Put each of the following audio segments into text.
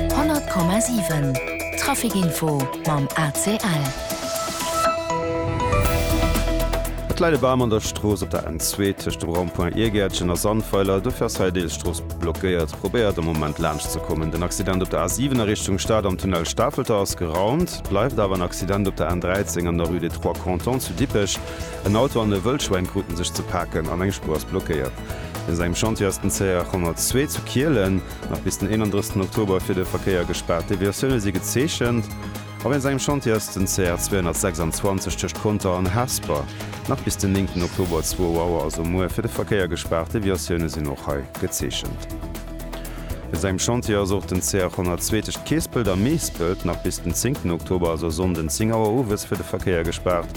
100,7 Trafic Info mam ACL. Et läit e Bam an der Strooss op der N2 tëscht dem Rond-point Iergäertchen a Sandweiler. Dofir ass hei deels Strooss blockéiert. Probéiert am Moment laanscht ze kommen. Den Accident op der A7 a Richtung Stad am Tunnel Stafelter ass geraumt. Et bleift awer en Accident op der N13 an der Rue des Trois Cantons zu Dippech. En Auto an e Wëllschwäin kruten sech ze paken an eng Spuer ass blockéiert. Wéinst engem Chantier ass den CR102 zu Kielen nach bis den 31 Oktober fir de Verkéier gespaart. Deviatioune si gezeechent. A wéinst engem Chantier ass den CR 226 tëscht Conter an Hesper nach bis den 9 Oktober 2 Auer, also muer, fir de Verkéier gespaart. Deviatioune sinn och hei gezeechent. Wéinst engem Chantier ass och den CR102 tëscht Keespelt a Meespelt nach bis den 10 Oktober, also Sonnden 10 Auer owes, fir de Verkéier gespaart.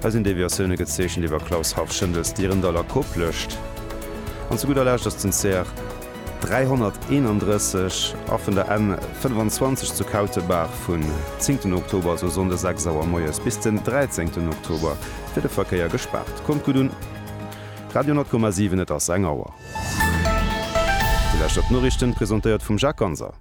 Hei sinn Deviatioune gezeechent iwwer Klaus Harff, Schëndels, Dirndall a Koplescht. An zu gudder Lescht ass den CR. 331 a vun der N 25 zu Kautebaach vun zéngten Oktober, also Sonnde 6 Auer moies, bis den dräizéngten Oktober fir de Verkéier gespaart. Kommt gutt un! Radio 10,7, et ass eng Auer. Déi lescht op d'Noriichten, presentéiert vum Jacques Ganser.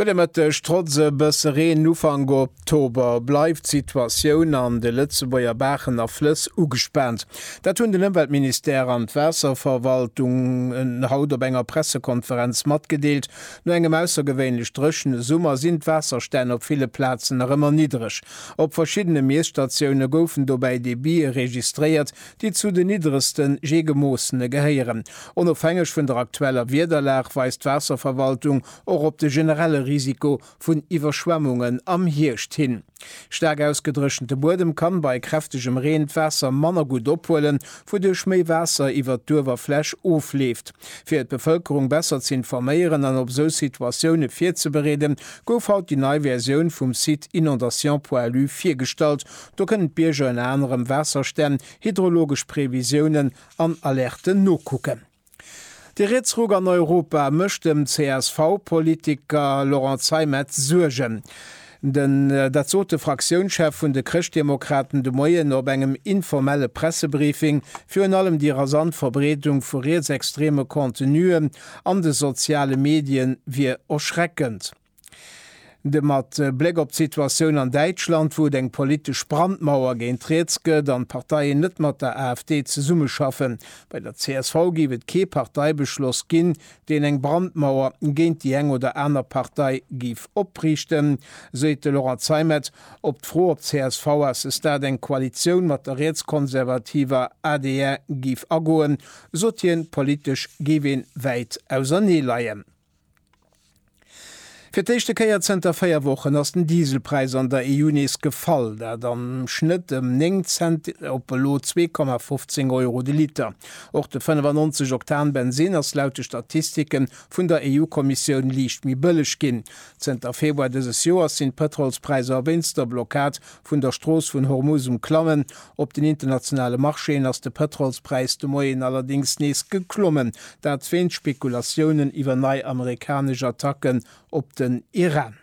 Gudde Mëtteg, Trotz e bësse Reen Ufank Oktober bleift d'Situatioun an de Lëtzebuerger Baachen a Flëss ugespaant. Dat hunn den Ëmweltministère an d'Waasserverwaltung haut op enger Pressekonferenz matgedeelt. No engem aussergewéinlech dréchene Summer sinn d'Waasserstänn op ville Plazen nach ëmmer niddreg. Op verschiddene Miesstatioune goufen dobäi Debite registréiert, déi zu de nidderegste je gemoossene gehéieren. Onofhängeg vun der aktueller Wiederlag weist d'Waasserverwaltung och op de generelle Risiko vun Iwwerschwemmungen am Hierscht hin. Staark ausgedréchente Buedem kann bei kräftegem Reen d'Waasser manner gutt ophuelen, wouduerch méi Waasser iwwert d'Uewerfläch ofleeft. Fir d'Bevëlkerung besser ze informéieren an op sou Situatioune virzebereeden, gouf haut déi nei Versioun vum Site inondations.lu virgestallt, Do kënnen d'Bierger ënner anerem Waasserstänn, hydrologesch Previsiounen an Alerten nokucken. De Rietsruck an Europa mécht dem CSV-Politiker Laurent Zeimet Suergen. Den dat sot de Fraktiounschef vun de Chrëschtdemokraten de Moien op engem informelle Pressebriefing. Virun allem déi rasant Verbreedung vu rietsextreme Contenuen an de soziale Medien wier erschreckend. De mat Bléck op d'Situatioun an Däitschland, wou et eng politesch Brandmauer géint riets gëtt an d'Parteien net mat der AfD zesummeschaffen. Bei der csv géif et kee Parteibeschloss ginn, deen eng Brandmauer géint déi eng oder aner Partei géif opriichten, seet de Laurent Zeimet op d'Fro, ob d'CSV-Assestat eng Koalitioun mat der rietskonservativer adr géif agoen, sot hien, Politesch géif ee wäit auserneeleien. Fir d'éischte Kéier zënter véier Wochen ass den Dieselpräis an der EU nees gefall, dat am Schnëtt ëm 9 Cent op elo 2,15 Euro de Liter. Och de 95 Oktan Bensinn ass laut de Statistike vun der EU-Kommissioun liicht méi bëlleg ginn. Zënter Februar dëses Joers sinn d'Pëtrolspräisser wéinst der Blockad vun der Strooss vun Hormuz um Klammen, Op den internationale Marchéen ass de Pëtrolspräis de Moien allerdéngs nees geklommen, dat wéint Spekulatiounen iwwer nei amerikanesch Attacken op den Iran.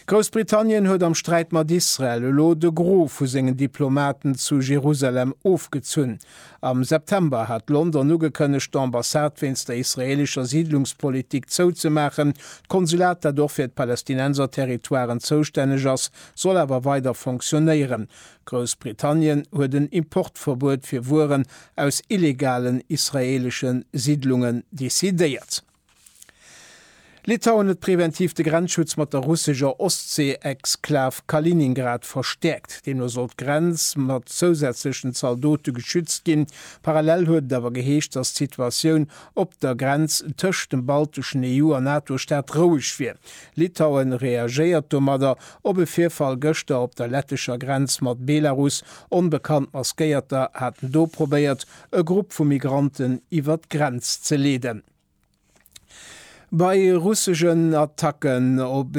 Groussbritannien huet am Sträit mat Israel elo de Gros vu sengen Diplomaten zu Jerusalem ofgezunn. Am September hat London ugekënnegt, d'Ambassade wéinst der israeelescher Siidlungspolitik zouzemaachen. D'Konsulat, dat och fir d'Palästinenser-Territoiren zoustänneg ass, soll awer weider fonctionéieren. Groussbritannien huet en Importverbuet fir Wueren aus illegalen israeelesche Siddlungen decidéiert. Litauen huet preventiv de Grenzschutz mat der russescher Ostsee-Exklav Kaliningrad verstäerkt. Deemno soll d'Grenz mat zousätzlechen Zaldote geschützt ginn. Parallel huet et awer geheescht, datt d'Situatioun op der Grenz tëscht dem balteschen EU a NATO-Staat roueg wier. Litauen reagéiert domadder Op e Virfall gëschter op der lettescher Grenz mat Belarus, onbekannt Maskéierter haten do probéiert, e Grupp vu Migranten iwwer d'Grenz ze leeden. Bei russegen Attacken op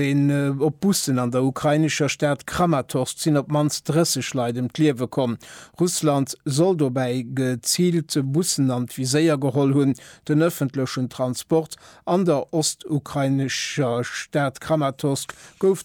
op Bussen an der ukrainescher Stad Kramatorsk sinn op d'mannst 30 Leit ëm d'Liewe komm. Russland soll dobäi geziilt Bussen an d'Viséier geholl hunn, den ëffentlechen Transport. An der ostukrainescher Stad Kramatorsk gouf